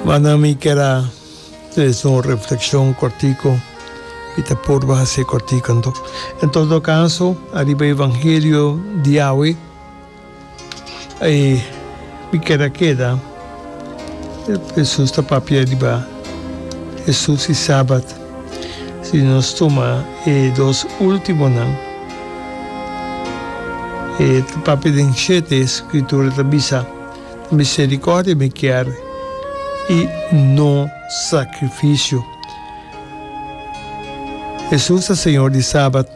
Manan mi kier a trese un reflekshon kòrtiku, mi ta purba hasi kòrtiku anto. En todo kaso, ariba e evangelio di awe, ei mi kier a keda. Hesus ta papia riba Hesus i Sabat. Si nos tuma e dos ultimonan, e ta papia den shete skritura ta bisa. Misericordia mi kier y no sacrificio. Jesús ta Señor di Sabat.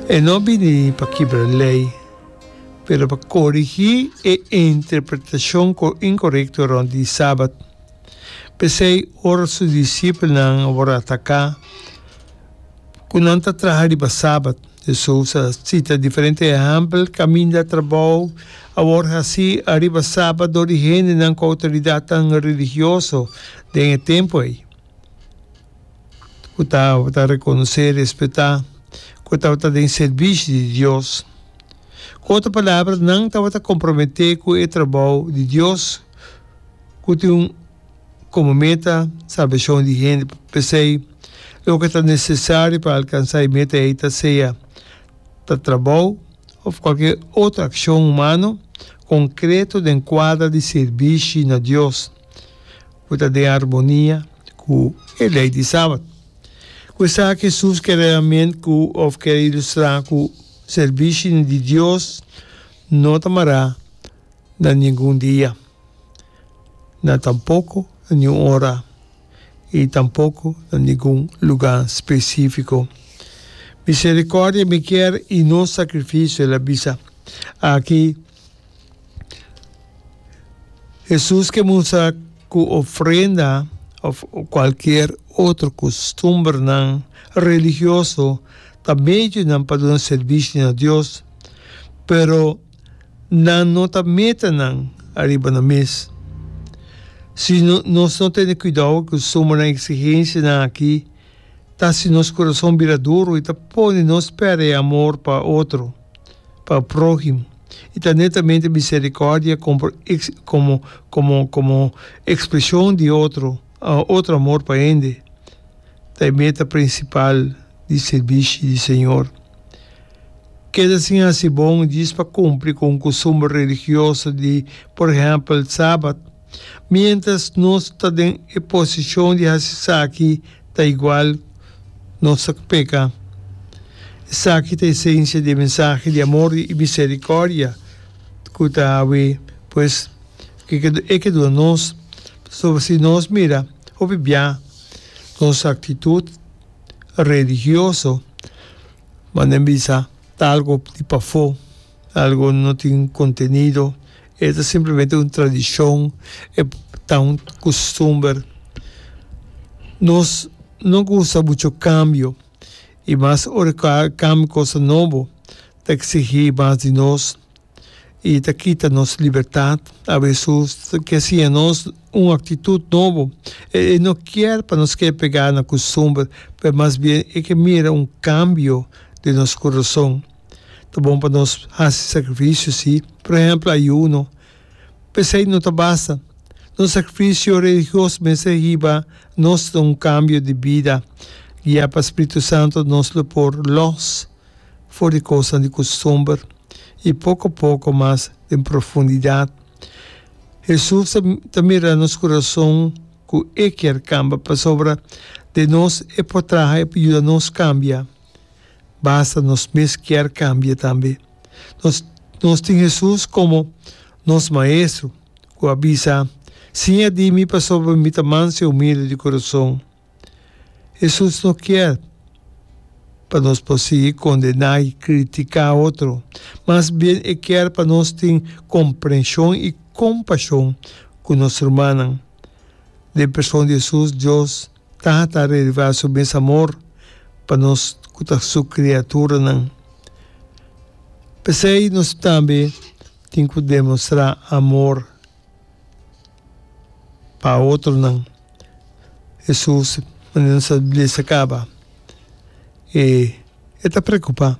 E no bini pa kibra ley, pero pa corigi e interpretacion incorecto rond di Sabat. P'esey ora su discipelnan a wor ataca cu nan ta traha riba Sabat, D'Souza cita diferente ehèmpel caminda trabou a word hací ariba Saba dor di hendenan cu autoridadnan religioso den e tempu ei, cu tabata reconocé i respetá, cu tabata den servishi di Dios. Cu otro palabra, nan tabata comprometé cu e trabou di Dios cu tin un. Komo meta, salbashon di hende. P'esei, loke ta nesesario pa alkansá e meta ei ta sea ta trabou òf kualke otro akshon humano konkreto den kuadra di sirbishi na Dios ku ta den armonia ku e lei di Sabat. Ku esaki Hesus kere realmente ku òf kere ilustrá ku sirbishi di Dios no ta mará na ningun dia. na tampoco na niun ora y tampoco na ningun luga specifico. Misericordia mi kier y no sacrificio, el a bisa. Aki Jesus ke musa cu ofrenda of cualkier otro costumbernan religioso ta medionan pa duna servishi na Dios, pero. Nan no ta meta nan ariba nan mes. Si nos no tene cuidao cu suma nan exigencianan aki, ta hasi nos curason bira duro y ta pone nos perde e amor pa otro, pa prohimo, y ta netamente misericordia como como como expresion di otro otro amor pa hende ta e meta principal di servishi di Señor. Keda sin hasi bon djis pa kumpli ku un kustumber religioso di, por ehèmpel, Sabat. Miéntras nos ta den e posishon di hasi esaki, ta igual nos ta peka. Esaki ta esensia di e mensahe di amor i miserikòrdia ku ta hawe. Pues, ke ke e ke duna nos? Pasobra si nos mira hopi bia, nos aktitut religioso Manda en bisa talgo di pafó, algo no tin contenido, e ta simplemente un tradicion, e ta un costumber. Nos no gusta mucho cambio y mas ora cambia cosa nobo ta exigí mas di nos. i ta kita nos libertat. A Hesus ta ke siña nos un aktitut nobo. E no kier pa nos ke pegá na kustumber, pero mas bien e ke mira un kambio den nos kurason. Ta bon pa nos hasi sakrifisio, sí. Por ehèmpel, ayuno. P'esei no ta basta. Nos sakrifisio religios mester hiba nos na un kambio di bida, guia pa spiritu santu, nos lo por lòs. for di kosnan di kustumber i poko poko mas den profundidat. Hesus ta mira nos kurason ku E kier kamba pasobra den nos E por traha, E por yuda nos kambia. Basta nos mes kier kambia tambe. Nos nos tin Hesus komo nos Maestro ku a bisa, Siña di mi pasobra mi ta manso i humilde di kurason. Hesus no kier pa nos por sigui kondená i kritiká otro. Mas bien e kier pa nos tin komprenshon i kompashon ku nos rumannan. Den person di Hesus, Dios Tata a revela su mes amor pa nos ku ta su kriaturanan. P'esei nos tambe tin ku demostrá amor pa otronan. Hesus manera sa bleasa kaba e e ta preokupá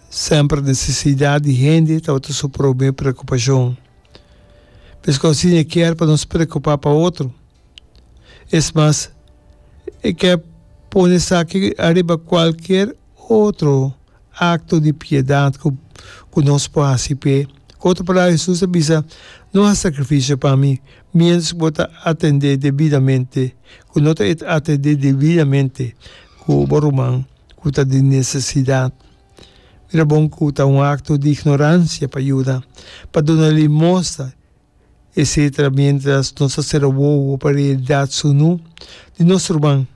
semper nesesidat di hende tabata su prome preokupashon. Meskos asin e kier pa nos preokupá pa otro. Es mas, e ke pone esaki ariba kualkier. Otro akto di piedat ku ku nos por hasi p'e. Ku otro palabra Hesus a bisa, No hasi sakrifisio pa mi, miéntras ku bo ta atendé debidamente ku no ta e atendé debidamente ku bo ruman ku ta den nesesidat. Mira bon ku ta un akto di ignoransia pa yuda, pa duna limosta. etcétera miéntras nos ta sera wowo pa realidad sunú di nos ruman.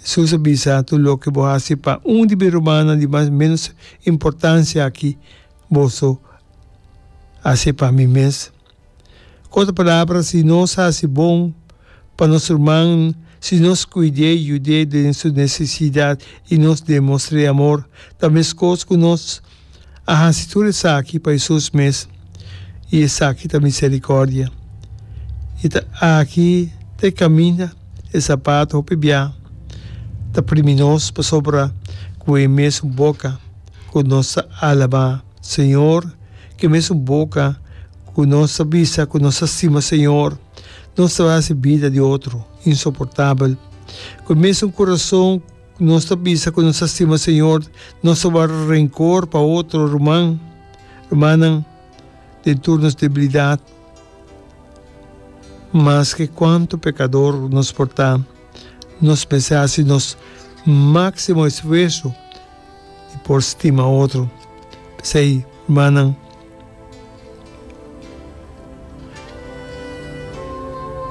Jesús a bisa, Tur loke bo hasi pa un di mi rumannan di mas ménos importansia akí, boso hasié pa mi mes. Ku otra palabra, si nos hasi bon pa nos ruman, si nos kuid'é, yud'é den su necesidad i nos demostr'é amor, ta meskos ku nos A hasi tur esaki pa e sus mes, i esaki ta miserikòrdia. E ta aki ta e kaminda, e sapat hopi bia ta primi nos, pasobra ku e mesun boka ku nos ta alabá Señor, ku e mesun boka ku nos ta bisa ku nos ta stima Señor, nos ta hasi bida di otro insoportabel. Ku e mesun kurason. Cu nos ta bisa cu nos ta stima Señor, nos ta warda rencor pa otro ruman, rumannan den tur nos debilidad. Maske cuantu pecador nos por ta, nos mester haci nos maximo esfuerso di por stima otro. P'esei, rumannan,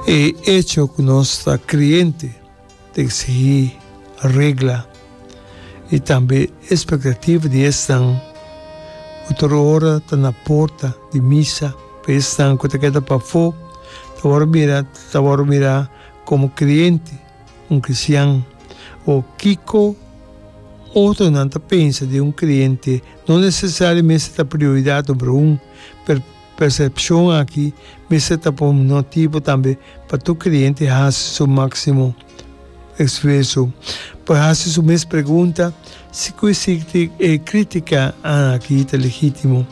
e hecho cu nos ta creyente, T'e sigui regla i tambe espektativa di esnan ku tur ora ta na porta di misa. Pa esnan ku ta keda pafó ta wòrdu mira ta wòrdu mira komo kriente, un kristian. Wou, kiko otronan ta pensa di un kriente no nesesario mester ta prioridat numero un, pero, Persepshon aki mester ta por motibo tambe pa tur kreyente hasi su máksimo esfuerso pa hasi su mes pregunta, Sikui si e krítika aki ta legítimo?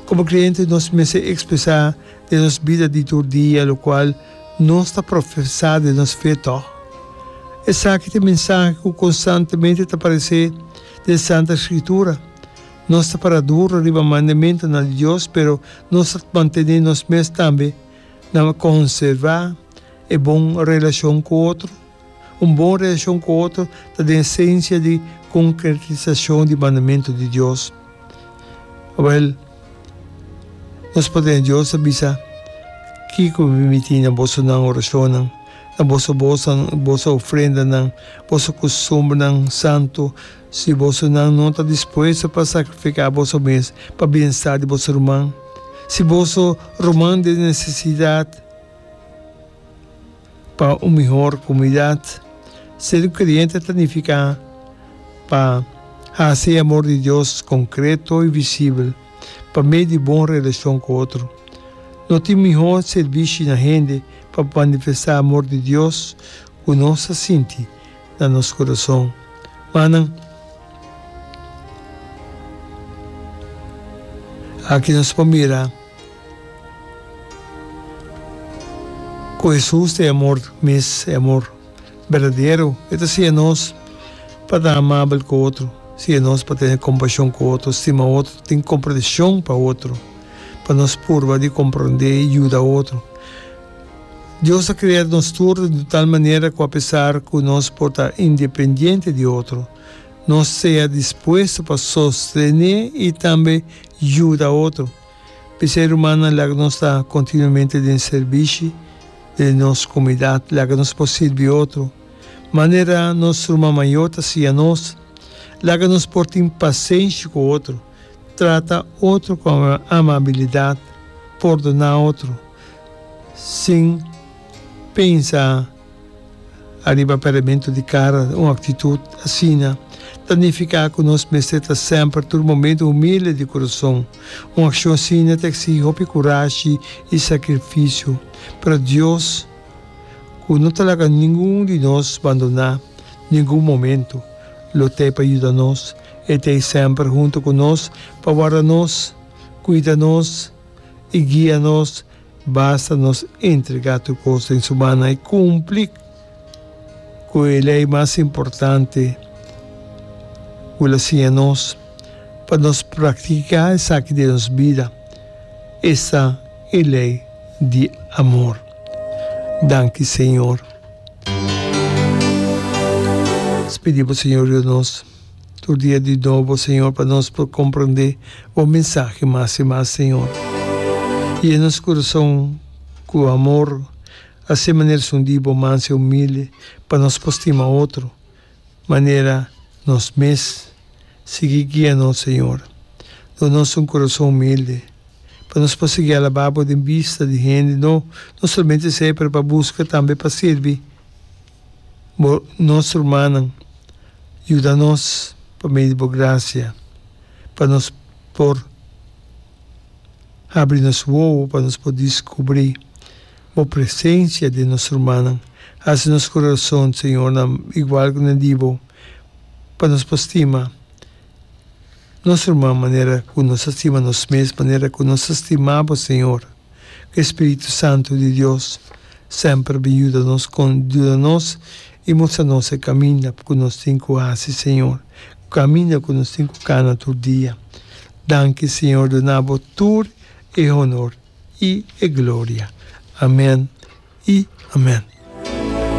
Komo kreyente nos mester ekspresá den nos bida di tur dia lokual nos ta profesá den nos fe tò. Esaki ta e mensahe ku konstantemente ta paresé den Santa Skritura. Nos ta para duru riba mandamentunan di Dios, pero nos ta mantene nos mes tambe na konservá e bon relashon ku otro. Un bon relashon ku otro ta den esensia di konkretisashon di mandamentu di Dios. Awor, nos Patrnan Dios a bisa, Kiko mi mitin na boso nan orashonnan, na boso bosanan, boso ofrendanan, boso kustumbernan santu? Si bosonan no ta dispuesto pa sacrifica boso mes pa bienestar di boso ruman, si boso ruman den necesidad pa un mihor comunidad, ser un creyente ta nifica pa haci e amor di Dios concreto y visibel pa medio di bon relacion cu otro. No tin mihor servishi na hende pa manifesta amor di Dios cu nos a sinti na nos kurason. Ma nan aki nos por mira ku Hesus ta e amor mes, e amor berdadero. E ta siña nos pa ta amabel ku otro, siña nos pa tene kompashon ku otro, stima otro, tin komprenshon pa otro, pa nos purba di komprondé i yuda otro. Dios a krea nos tur di un tal manera ku apesar ku nos por ta independiente di otro, nos sea dispuesto pa sostené i tambe yuda otro. P'esei rumannan laga nos ta kontinuamente den sirbishi den nos komunidat. Laga nos por sirbi otro manera nos ruman mayor ta siña nos. Laga nos por tin pasenshi ku otro, trata otro ku amabilidat, pordoná otro. sin pensa ariba peramentu di kara. Un aktitut asina ta nifiká ku nos mester ta semper, tur momentu, humilde di kurason. Un akshon asina ta eksigi hopi kurashi i sakrifisio. Pero Dios, ku no ta laga ningun di nos bandoná ningun momentu, lo t'ei pa yuda nos. E t'ei semper huntu ku nos pa warda nos, kuida nos. I guia nos, basta nos entregá tur kos den Su mana i kumpli ku e lei mas importante ku El a siña nos. Pa nos praktiká esaki den nos bida, esta e lei di amor. Danki, Señor. Nos pidi Bo, Señor Dios nos. Tur dia di nobo Señor pa nos por comprende bo mensahe mas y mas Señor. Yena nos corazon cu amor así manera esun di bo manso y humilde pa nos por stima otro manera nos mes. Sigui guia nos Señor. Duna nos un corazon humilde pa nos por sigui alaba bo den bista di hende no, no solamente esey pero pa busca tambe pa sirbi. Bo, nos rumannan, yuda nos pa medio di bo gracia, pa nos por habri nos wowo, pa nos por discubri bo presencia den nos rumannan. Haci nos corazon, Señor, nan igual cu nan di bo, pa nos por stima. nos ruman manera ku nos ta stima nos mes, manera ku nos ta stima bo Señor. Ku e Spiritu Santu di Dios semper bin yuda nos kon yuda nos i mustra nos e kaminda ku nos tin ku hasi Señor, kaminda ku nos tin ku kana tur dia. Danki Señor duna bo tur e honor i e gloria. Amen i amen.